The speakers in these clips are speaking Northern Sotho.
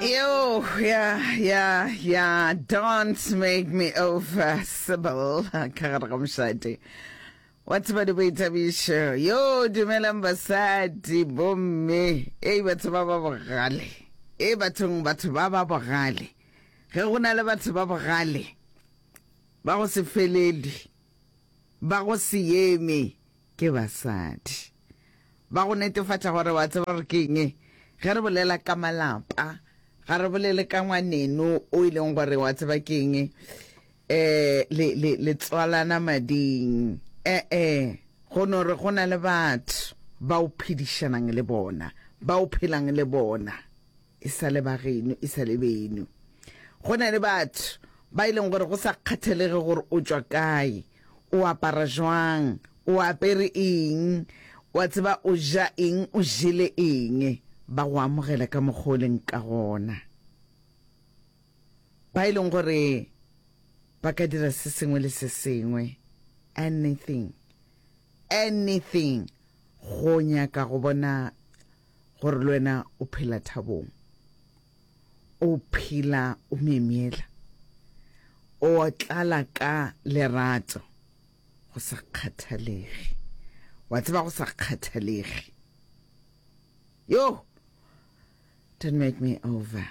Yo, ya, ya, ya, don't make me over, Sybil, ka gare ga mošate. Wa tseba di boithabišo. Yo, dumelang basadi, bomme, ei batho ba ba bogale. E bathong batho ba ba bogale. Ge go na le batho ba bogale, ba go se felele, ba go se yeme, Ke basadi ba go netefatša gore wa tseba gore ke eng. Ge re bolela ka malapa, ga re bolele ka ngwaneno o e leng gore wa tseba ke eng, um le, le, le tswalana mading, e-e, go no re go na le batho ba o phedišanang le bona, ba o phelang le bona. e sa le ba geno e sa le beno go na le batho ba e leng gore go sa kgathelege gore o tšwa kae o apara jwang o apere eng wa tseba o ja eng o jele eng ba go amogela ka mokgwa o leng ka gona ba e leng gore ba ka dira se sengwe le se sengwe anything anything go nyaka go bona gore le wena o phela thabong, o phela o myemyela, o tlala ka lerato go sa kgathalege. Wa tseba go sa kgathalege. Yo! Don't make me over.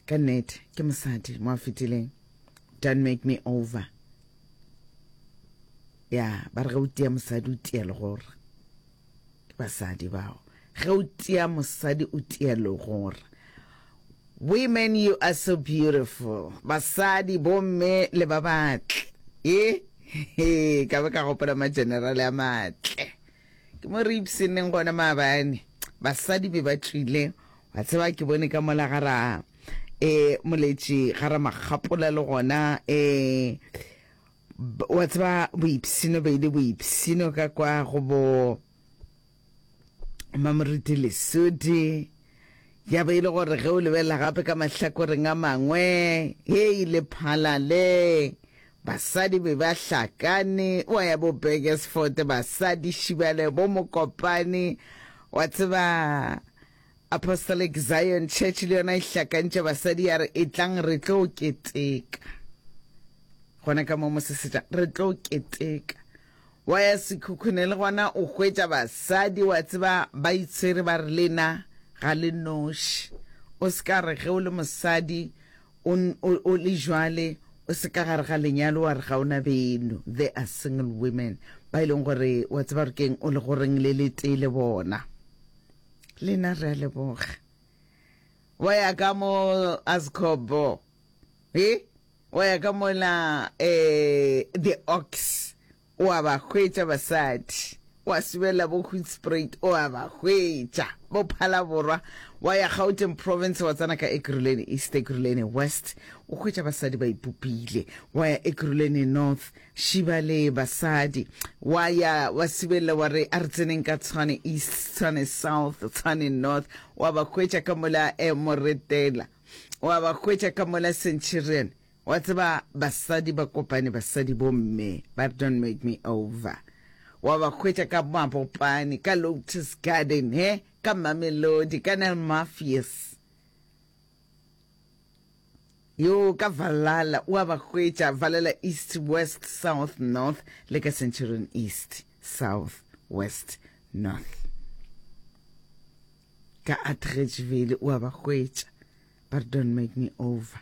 Ka nnete, ke mosadi mo a fetileng. Don't make me over. Ya, ba re ge o tia mosadi o tia legora. Ke basadi bao. Ge o tia mosadi o tia legora. Women, you are so beautiful. Basadi, bomme le ba batle. Eh? He, ka be ka gopola magenerale a matle. Ke mo re ipsenneng gona maabane. Basadi be ba tlile Wa tseba ke bone ka mola ga ra e moletši ga ra makgapola le gona e wa tseba boipsino be le boipsino ka kwa go bo mamoruti lesodi ya be e le gore ge o lebelela gape ka mahlakoreng a mangwe e ile phalale Basadi be ba hlakane, wa ya bo Burgersfort, basadi šibale, bo Mokopane, wa tseba Apostolic Zion Church le yona e hlakantše basadi ya re etlang re tlo keteka gona ka mo mosesetša re tlo keteka wa ya sekhukhune le gona o hwetša basadi wa tseba ba itshwere ba re lena ga le noši o se ka re ge o le mosadi O, o, o le jwale, o se ka gare ga lenyalo wa re ga o na beno. There are single women, ba e leng gore wa tseba gore keng, o le goreng le le tee le bona. Lena re a leboga. Wa ya ka mo Azkobo. He? Wa ya ka mola, eh, the ox. O a ba hwetša basadi. O a subela bo Hoedspruit, o a ba hwetša bo Phalaborwa, wa ya Gauteng Province wa tsena ka Ekurhuleni East, Ekurhuleni West, o hwetša basadi ba ipopile, wa ya Ekurhuleni North, šiba le basadi, wa ya wa subelela wa re a re tseneng ka Tshwane East, Tshwane South, Tshwane North, o a ba hwetša ka mola eh, Moretela, o a ba hwetša ka mola Centurion, Wa tseba basadi ba kopane basadi bo mme ba re don't make me over wa ba hwetša ka mabopane ka lotus garden he ka mamelodi ka nel mafies yo ka valala wa ba hwetša valala east west south north le ka centurion east south west north ka atregevele wa ba hwetša but don't make me over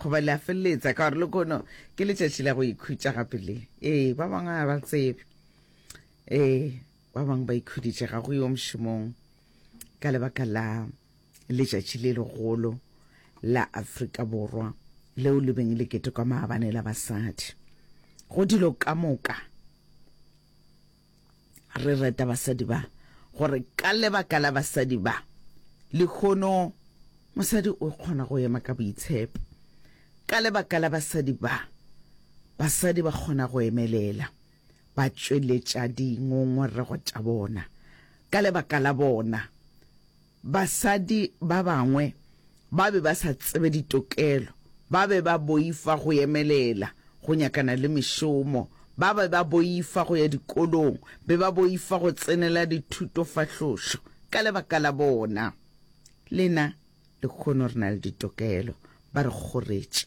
Goba le a feleletsa ka gore lekono ke letšatši la go ikhutša gape le. Ee, ba bangwe ga ba tsebe. Ee, ba bangwe ba ikhuditše ga go yo mošomong ka lebaka la letšatši le legolo la Afrika Borwa leo le beng le ketekwa maabane la basadi. Go dilo ka moka Re reta basadi ba gore ka lebaka la basadi ba, lehono mosadi o kgona go ema ka boitshepo. Ka lebaka la basadi ba, basadi ba kgona go emelela, ba tšweletša dingongorego tša bona. Ka lebaka la bona, Basadi ba bangwe ba be ba sa tsebe ditokelo, ba be ba boifa go emelela go nyakana le mešomo, ba be ba boifa go ya dikolong, be ba boifa go tsenela dithutofahlošo ka lebaka la bona. Le na lekhono re na le ditokelo, ba re kgoretše.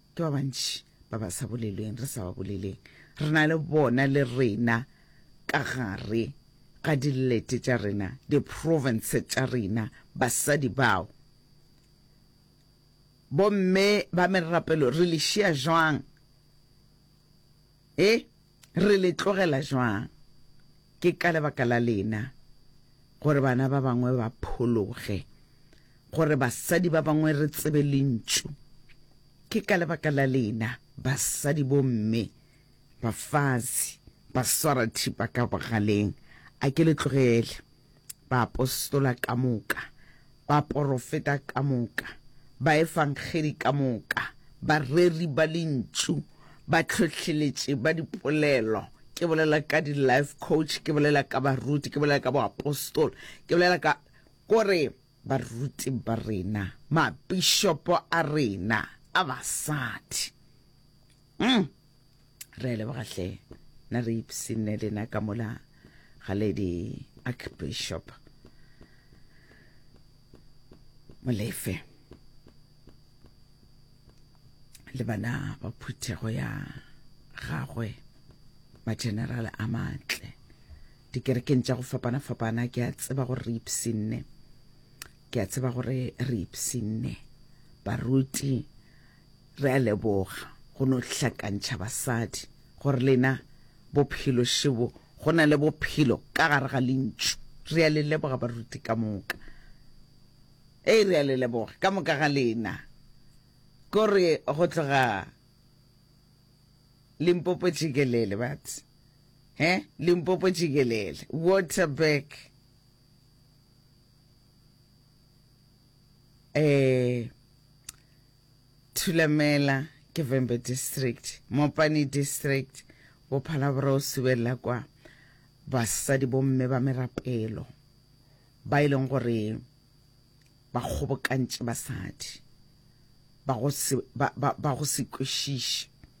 Ke ba bantši ba ba sa bolelweng, re sa ba boleleng, re na le bona le rena ka gare ga dilete tša rena, diprovince tša rena, basadi bao bomme ba merapelo re le šia jwang? E, re le tlogela jwang? Ke ka lebaka la lena gore bana ba bangwe ba phologe, gore basadi ba bangwe re tsebe lentšu. Ke ka lebaka la lena basadi bomme, bafazi, baswarathipa ka bogaleng. A ke le tlogele. baapostola ka moka, baporofeta ka moka, baefangedi ka moka, bareri ba lentšu, batlhohleletši ba dipolelo, ke bolela ka di-life coach, ke bolela ka baruti, ke bolela ka boapostola, ke bolela ka kore baruti ba rena, mabišopo a rena a basadi. Mm. re leboga hle na re ipsinne lena ka mola ga lady archbishop molefe le bana ba phuthego ya gagwe mageneral a matle dikerekeng tša go fapana-fapana ke a tseba gore re ipsinne ke a tseba gore re ipsinne baruti Re a leboga go no hlakantšha basadi gore lena bophelo šebo go na le bophelo ka gare ga lentšu. Re a le leboga baruti ka moka. Ee, re a le leboga ka moka ga lena. Kore go tloga Limpopo jikelele but he Limpopo jikelele Waterberg. eh, thulamela ke vembe district mopane district bophala bora o subelela kwa basadi bomme ba merapelo ba e leng gore ba kgobokantše basadi ba go se kwešiše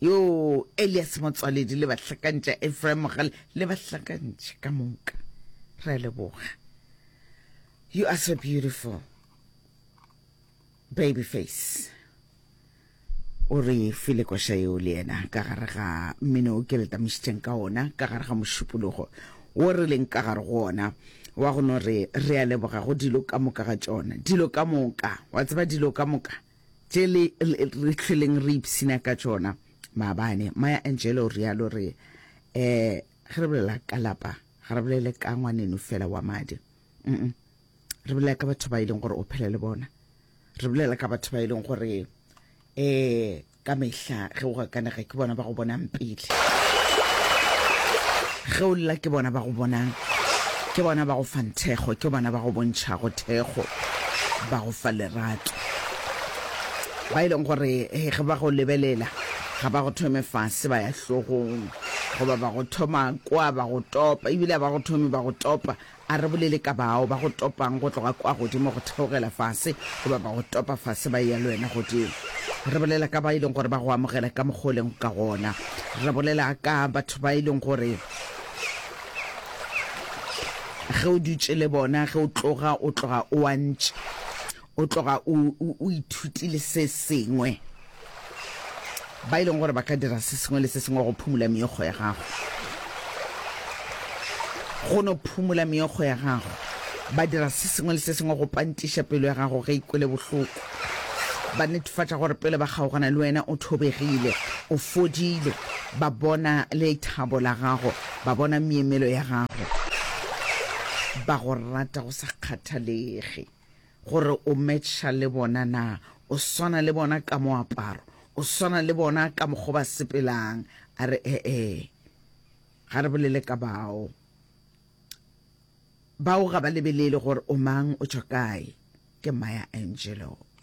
Yoo, Elias Motswaledi le bahlakantša, Ephraim Mogale le bahlakantši ka moka. Re a leboga. You are so beautiful. Baby face. o re file koša yeo le yena ka gare ga mmino o ke le tamišitšeng ka ona ka gare ga mošupologo wo re leng ka gare go ona wa go no re re a leboga go dilo ka moka ga tšona dilo ka moka wa tseba dilo ka moka tše le, le, re hlweleng re ipshina ka tšona. Maabane, Maya Angelou o realo, re, eh, ge re bolela ka lapa, ga re bolele ka ngwaneno fela wa madi. Mm-mm. Re bolela ka batho ba e leng gore o phela le bona. Re bolela ka batho ba e leng gore, eh, ka mehla. Tla ge o gakanega ke bona ba go bonang pele. Ge o lla ke bona ba go bonang. Ke bona ba go fang thekgo, ke bona ba go bontšhago thekgo, ba go fa lerato. Ba e leng gore eh, ge ba go lebelela ga ba go thome fase ba ya hlogong goba ba go thoma kwa ba go topa ebile ba go thome ba go topa A re bolele ka bao ba go topang go tloga kwa godimo go theogela fase, goba ba go topa fase ba eya le wena godimo. Re bolela ka ba e leng gore ba go amogela ka mokgwa o lego ka gona. Re bolela ka batho ba e leng gore ge o dutše le bona, ge o tloga, o tloga o a ntše O tloga o, o, o ithutile se sengwe. Ba e leng gore ba ka dira se sengwe le se sengwe go phumola meokgo ya gago. Go no phumola meokgo ya gago. Ba dira se sengwe le se sengwe go pantiša pelo ya gago ge e kwele bohloko. Ba netefatša gore pele ba kgaogana le wena o thobegile, o fodile. Ba bona lethabo la gago. Ba bona meemelo ya gago. Ba go rata go sa kgathalege. gore o matcha le bona na, o swana le bona ka moaparo, o swana le bona ka mokgwa ba sepelang. A re ee, ga re bolele ka bao. Bao ga ba lebelele gore o mang, o tšwa kae, ke Maya Angelou.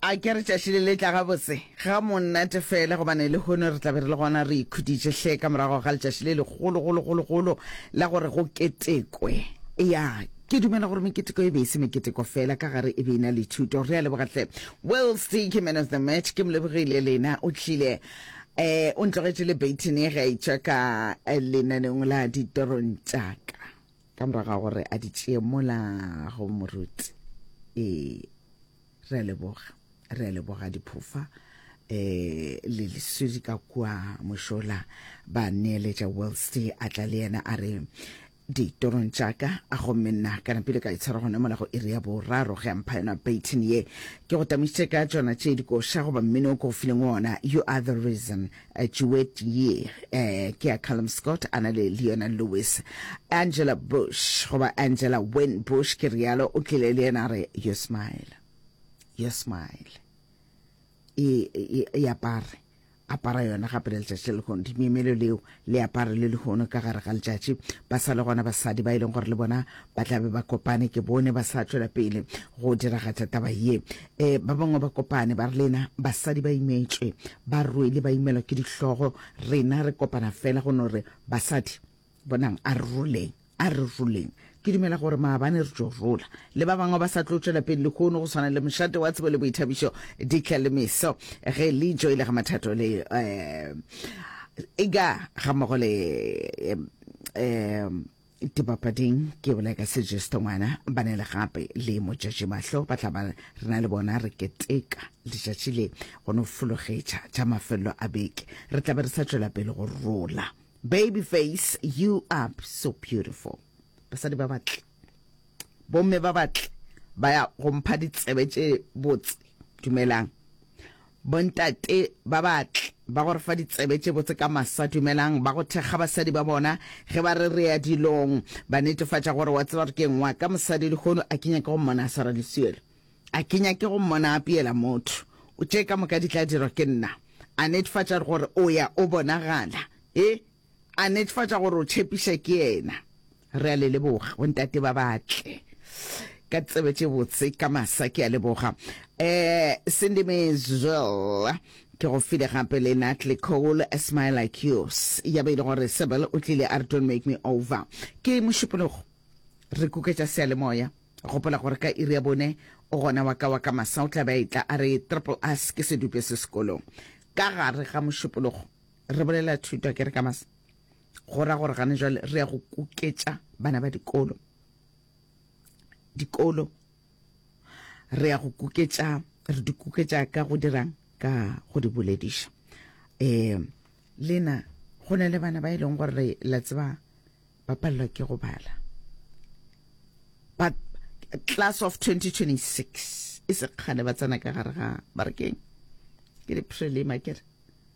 A ke re tšatši le le tla gabotse ga monate fela, gobane lehono re tla be re le gona re ikhuditše hle ka morago ga letšatši le legolo-golo-golo-golo la gore go ketekwe. Eya, ke dumela gore meketeko e be e se meketeko fela, ka gare e be e na le thuto. Re a leboga hle Will Steaky, man of the match. Ke Molebogile Lena, o tlile um o ntlogetše le baton e gaetšwa ka lenaneong la ditorong tša ka ka morago ga gore a di tšee mola go moruti. Ee. re a leboga re a leboga diphofa eh le lesedi ka kwa mošola ba neeletša wellsty a tla le yena a re ditorong tšaka a gomme nna ka napile ka itshwara gona mola go iri ya boraro ge a mpha yona baitin ye ke go tamišitše ka tšona tše dikoša goba mmino o ke go fileng ona you are the reason Jewett Yee, eh, ke ya Callum Scott a na le Leona Lewis. Angela Bush, goba Angela Wynn Bush, ke rialo, o tlile le yena a re, Your smile, your smile. E, e, e apare apara yona gape le letšatši le lehono dimemelo leo le apare le lehono ka gare ga letšatši ba sa le gona basadi ba e leng gore le bona ba tlabe ba kopane ke bone ba sa tšwela pele go diragatša taba ye E, ba bangwe ba kopane ba re lena basadi ba imetšwe, ba rwele ba imelwa ke dihlogo, rena re kopana fela go no re, Basadi, bonang, a re roleng, a re roleng. Ke dumela gore maabane re tšo rola. Le ba bangwe ba sa tlo tšwela pele lehono, go swana le Mošate wa Tsebo le Boithabišo, Dikla le Meso, ge le joile ga Mathato le um ega ga mmogo le um dipapading ke bola ka sejesto ngwana ba ne le gape le motšatši mahlo ba tla ba re na le bona re keteka letšatši le go no fologetša tša mafelelo a beke re tla be re sa tšwela pele go rola baby face you are so beautiful basadi ba batle bomme ba batle ba ya go mpha ditsebe tše botse dumelang Bontate ba ba tl ba go re fa ditsebe tše botse ka masa, dumelang ba go thekga basadi ba bona ge ba re re ya dilong. Ba netefatša gore wa tseba gore ke eng wa ka mosadi lehono, a ke nyake go mmona a swara leswele. A ke nyake go mmona a apeela motho. Tše ka moka di tla dirwa ke nna. A netfatša gore o ya o bonagala. E, A netefatša gore o tšhepiša ke yena. Re a le leboga, bontate ba batle. Ka tsebe tše botse, ka masa, ke a leboga. Eh, Cindy Maysville, ke go file gape le Natalie Cole, A Smile Like Yours. Ya be e le gore Sybil o tlile a re Don't Make Me Over. Ke mošupologo. Re kuketša seyalemoya. Gopola gore ka iri ya bone o gona wa ka wa ka masa o tla be a etla a re Triple S ke sedupe se sekolong. Ka gare ga mošupologo. Re bolela thuto ke re ka mas go ra gore gane jwale re ya go kuketša bana ba dikolo dikolo re ya go kuketša re di kuketša ka go dirang ka go di bolediša um lena go na le bana ba e leng gore la tseba ba palelwa ke go bala but class of 2026 e sekgale ba tsena ka gare ga barekeng ke di prelima kere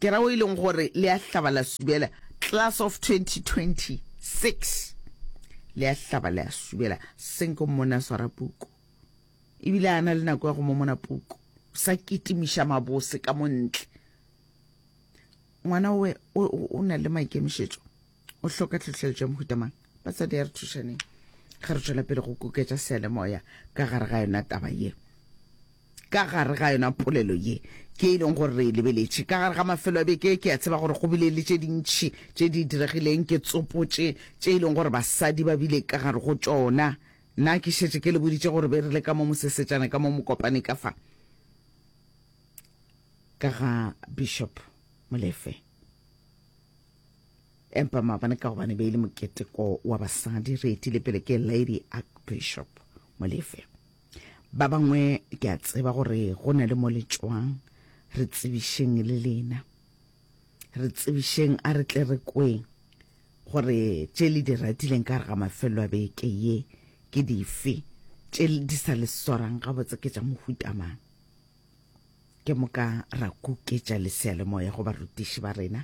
Ke ra o e leng gore le a hlaba la subela, class of 2026, le a hlaba le a subela. Senko mmone a swara puku, ebile a na le nako ya go momona puku, o sa kitimiša mabose ka mo ntle. Ngwana o, o, o na le maikemišetšo. o hloka tlhohleletšo ya mohuta mang batsadi ya re thušaneng ge re tšwela pele go koketša sealemoya ka gare ga yona taba ye ka gare ga yona polelo ye ke e leng gore re e lebeletše ka gare ga mafelo a beke ke a tseba gore go bile le tše dintšhi tše di diregileng ke tsopotše tše e leng gore basadi ba bile ka gare go tšona nna ke šetše ke le boditše gore be re le ka mo mosesetšana ka mo mokopane ka fa ka ga bishop molefe empa maabane ka gobane be e le moketeko wa basadi re etile pele ke lady archbishop molefe ba bangwe ke a tseba gore go na le mo le tswang re tsebišeng le lena re tsebišeng a re tle re kweng gore tše le di ratileng ka re ga mafelelo a beke ye ke dife tše di sa le swarang gabotse ke tša mohutamang Ke moka ra kuketša leseyalemoya go barutiši ba rena,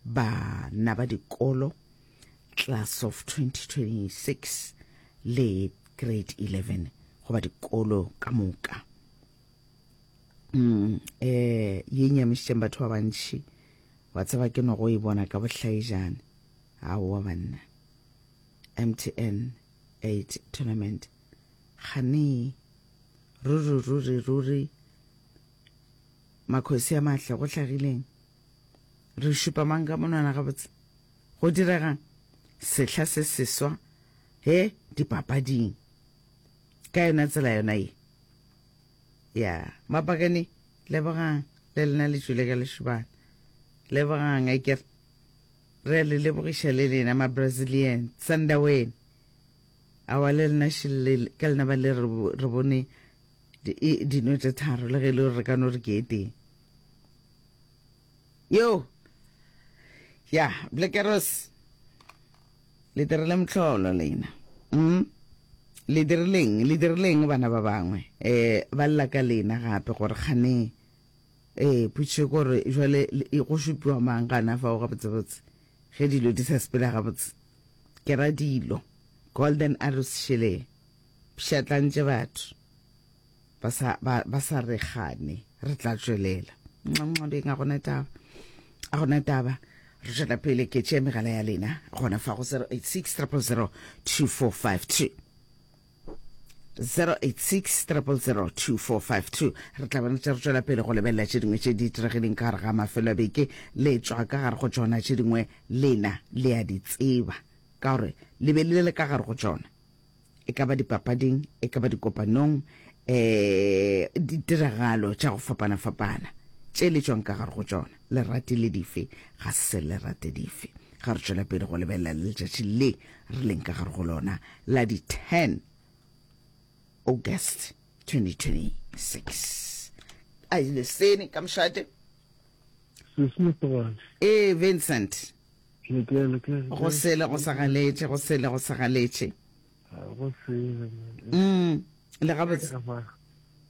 bana ba dikolo, class of 2026 le grade 11 goba dikolo ka moka. Mm, eh, ye nyamišitšeng batho ba bantši wa tseba ke no go e bona ka bohlaejane aowa banna mtn Eight Tournament. Ganee. Ruri, ruri, ruri. Makhosi a mahle, go hlagileng? Re šupa mang ka monwana gabotse? Go diregang? Sehla se seswa, he, dipapading. Ka yona tsela yona ye. Ya, Mapakane, lebogang, le lena le tšwile ka lešobana. Lebogang, a kere. Re a le lebogiša le lena ma Brazilian. Sandaweni. Aowa le lena shillel ka lena ba le re bone e dino tše tharo le ge e le gore re ka no re ke e teng yo ya blekeros le dirile motlholo lena mm? le dirileng le dirileng bana ba bangwe um ba lla ka lena gape gore kgane Ee, potšišo ke gore jwale go šupiwa mang gana fao gabotsebotse ge dilo di sa sepela gabotse? Ke ra dilo, Golden Arrows šele e pšhatlantše batho ba sa, ba, ba sa re gane. Re tla tšwelela. Nxa-nxa beng, a gona taba. A gona taba. Re tšwela pele ke tšea megala ya lena gona fa go 086 000 2452. 0860002452 re tla bana tša re tšwela pele go lebelela tše dingwe tše di tiregileng ka gare ga mafelo a beke le tšwa ka gare go tšona tše dingwe lena le a di tseba ka gore le be le le ka gare go tšona e ka ba dipapading e ka ba dikopanong um ditiragalo tša go fapana-fapana tše le tšwang ka gare go tšona Le ratile dife? Ga se le rate dife? Ga re tšwela pele go lebelela le letšatši le re leng ka gare go lona la di 10 August 2026. A ile sene ka mošate. Sesne Togadi. Ee, Vincent. Ke ke le ke. Go sele go sa galetše, go sele go sa galetše. Go sele. Mm. Le gabotse.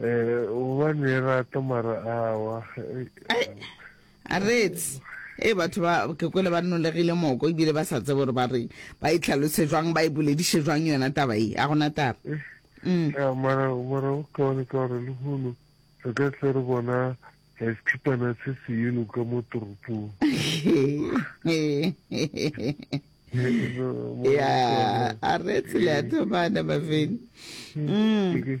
Eh, gobane e rata mara awa. Ai, a rets e batho ba ke kwele ba nnolegile moko ebile ba sa tsebe gore ba reng ba e tlhalose jwang ba e bolediše jwang yona taba e a gona taba Eh, Mm. ya, mara mara o kaone ka gore lehono re ka tle re bona eh, sekhipana se se yelo ka mo toropong ya a rets le a thomana mafeni Mm. Ke-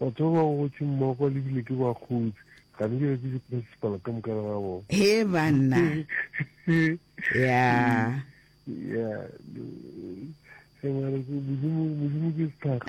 Batho ba ba gotše mmoko le bile ke ba kgontsi, ga di bjale ke di principal ka moka ga bona. Hee banna. Yeah. Yeah. Modimo ke sethakga.